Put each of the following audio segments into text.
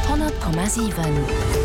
100,7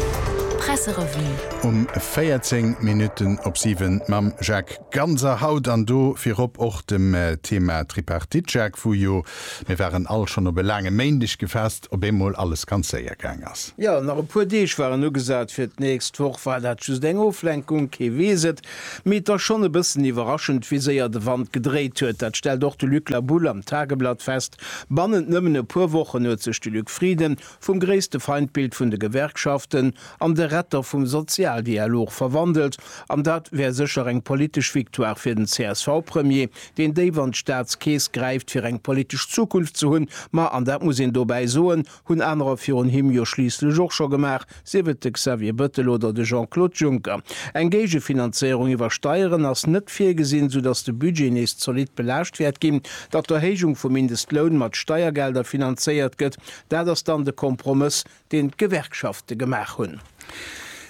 Presserevue. Um 14 Minutten op 7 mam Jacques Ganser haut an do virop och dem Thema Tripartite. Jacques, wou jo, mir waren all schonn op e laange Méindeg gefasst, op eemol alles ganz séier gaang ass. Jo, nach e puer Deeg waren ugesat, fir d'nächst Woch war dat just eng Oflenkung, kee weess et. Mee et ass schonn e bëssen iwwerraschend, wéi séier de Wand gedréit huet. Dat stellt och de Luc Labulle am Tageblatt fest, Bannent nëmmen e puer Wochen huet sech de Luc Frieden vum gréisste Feindbild vun de Gewerkschaften an de Retter vum Sozialdialog verwandelt. An dat wär sécher eng politesch Victoire fir den CSV-Premier, deen déif an d'Staatskeess gräift, fir eng politesch Zukunft ze hunn. Ma, an dat muss een dobäi soen, Hunn anerer virun him jo schliisslech och scho gemaach, sief et de Xavier Bettel oder de Jean-Claude Juncker. Eng Géigefinanzéierung iwwer Steieren ass net virgesinn, soudatt de Budget nees zolidd belaascht wäert ginn. Datt d'Erhéijung vum Mindestloun mat Steiergelder finanzéiert gëtt, dat ass dann de Kompromëss, deen d'Gewerkschafte gemaach hunn.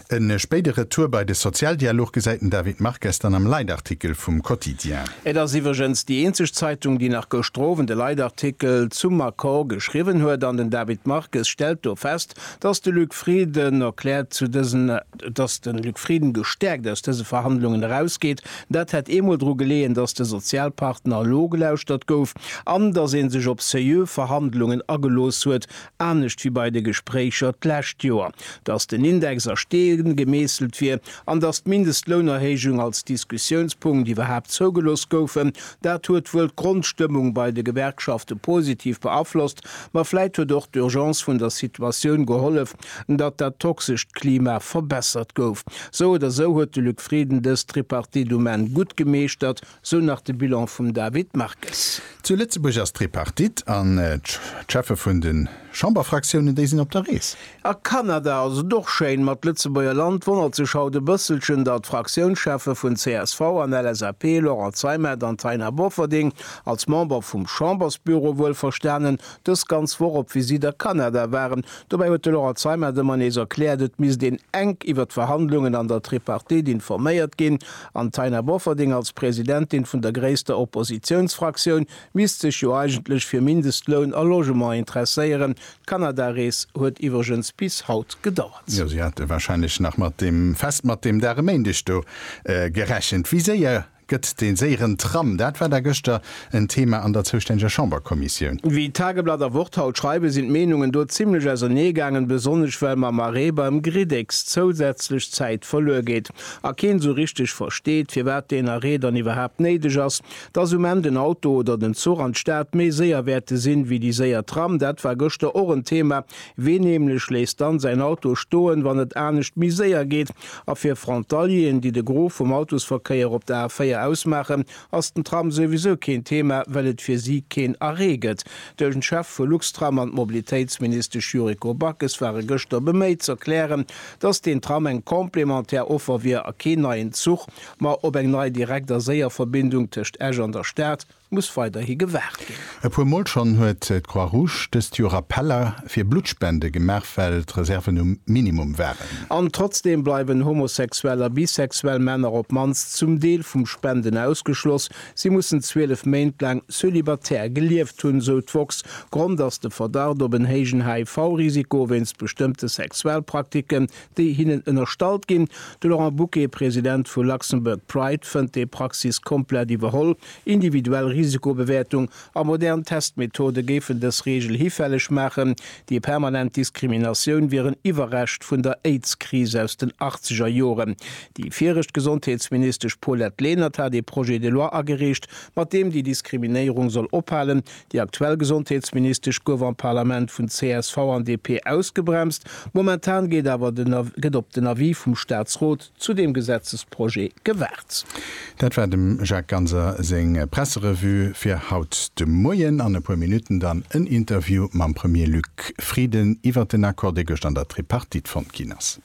E spéide Retour bei de Sozialdialog gesäit den David Marques dann am Leitartikel vum Quotidien. Et ass iwwregens déi eenzeg Zeitung, déi nach gëschter Owend e Leitartikel zum Accord geschriwwen huet. An den David Marques stellt do fest, datt de Luc Frieden erkläert, zu dësen, datt de Luc Frieden gestäerkt aus dëse Verhandlungen erausgeet. Dat hätt eemol dru geleeën, datt de Sozialpartner elo gelauschtert gouf an datt ee sech op seriö Verhandlungen agelooss huet, anescht wéi bei de Gespréicher d'lescht Joer, datt den Index a Steen gemeesselt wier an datt d'Mindestlounerhéijung als Diskussiounspunkt iwwerhaapt zougelooss goufen. Dat huet wuel d'Grondstëmmung bei de Gewerkschafte positiv beaflosst, ma vläit huet och d'Urgence vun der Situatioun gehollef, datt dat toxescht Klima verbessert gouf. Sou oder sou huet de Luc Frieden dës Tripartite um Enn gutt gemeeschtert. Sou nach de Bilan vum David Marques. Zu Lëtzebuerg ass d'Tripartite an d'Cheffe vun de Chamberfraktiounen, déi sinn op der Rees. A Kanada ass et och schéin mat Lëtzebuerger Land. Wonnert sech haut e bësselchen, datt d'Fraktiounscheffe vun csv an LSAP, Laurent Zeimet an Taina Bofferding, als Member vum Chambersbüro wuelverstanen, dës ganz Woch op Visitt a Kanada waren. Dobäi huet de Laurent Zeimet ëmmer nees erkläert, et misst een enk iwwer d'Verhandlungen an der Tripartite informéiert ginn. An d'Taina Bofferding als Presidentin vun der gréisster Oppositiounsfraktioun misst sech jo eigentlech fir Mindestloun a Logement interesséieren. D'Kanada-Rees huet iwwregens bis haut gedauert. Jo, si hate warscheinlech nach mat deem Fest, mat deem Dag e Méindeg do gerechent. Wéi séier gëtt dee séieren Tram? Dat war da gëschter en Thema an der zoustänneger Chamberkommissioun. Wéi Tageblatt a Wort haut schreiwen, sinn d'Meenungen do zimmlech auserneegaangen, besonnesch well mam Arrêt beim Griddex zousätzlech Zäit verluer geet. a keen esou richteg versteet, firwat deen Arrêt dann iwwerhaapt néideg ass, dass um Enn den Auto oder den Zuch an d'Stad méi séier wäerte sinn, wéi déi séier Tram, dat war gëschter och en Thema. Ween nämlech léisst dann säin Auto stoen, wann et anescht méi séier geet? A fir Frontalieren, déi de Gros vum Autosverkéier op der A4 ausmaachen, ass den Tram souwisou keen Thema, well et fir si keen Arrêt gëtt. Den Chef vu Luxtram an d'Mobilitéitsministesch Yuriko Backes ware gëschter beméit z'erklären, datt deen Tram eng complémentaire Offer wier a keen neien Zuch, ma op eng nei direkt a séier Verbindung tëscht Esch an der Stad muss weiderhi gewaart ginn. E puer Mol schonn huet d'Croix Rouge dëst Joer Appeller fir Bluttspende gemaach, well d'Reserven um Minimum waren. An trotzdeem bleiwen homosexuell a bisexuell Männer op d'mannst zum Deel vum Spenden ausgeschloss. Si mussen 12 Méint laang cölibatär gelieft hunn, sou d'woxx. Grond ass de Verdacht op en héijen HIV-Risiko wéinst bestëmmte Sexualpraktiken, déi hinnen ënnerstallt ginn. De Laurent Bucke, President vu Luxembourg Pride, fënnt déi Praxis komplett iwwerholl. Individuell Risikobewäertung a modern Testmethode géifen dës Reegel hifälleg maachen. Déi permanent Diskriminatioun wier en Iwwerrescht vun der Aids-Kris aus den achtzeger Joren. Déi viregt Gesondheetsministesch Paulette Lenert hat ee Projet de loi agereecht, mat deem déi Diskriminéierung soll ophalen. Déi aktuell Gesondheetsministesch gouf am Parlament vun csv an DP ausgebremst. Momentan geet awer den gëtt op den Avis vum Staatsrot. zu deem Gesetzesprojet gewaart. Dat war dem Jacques Ganser seng Presserevue fir haut de Moien. An e puer Minutten dann en Interview mam Premier Luc Frieden iwwert den Accord, dee gëscht an der Tripartite fonnt ginn ass.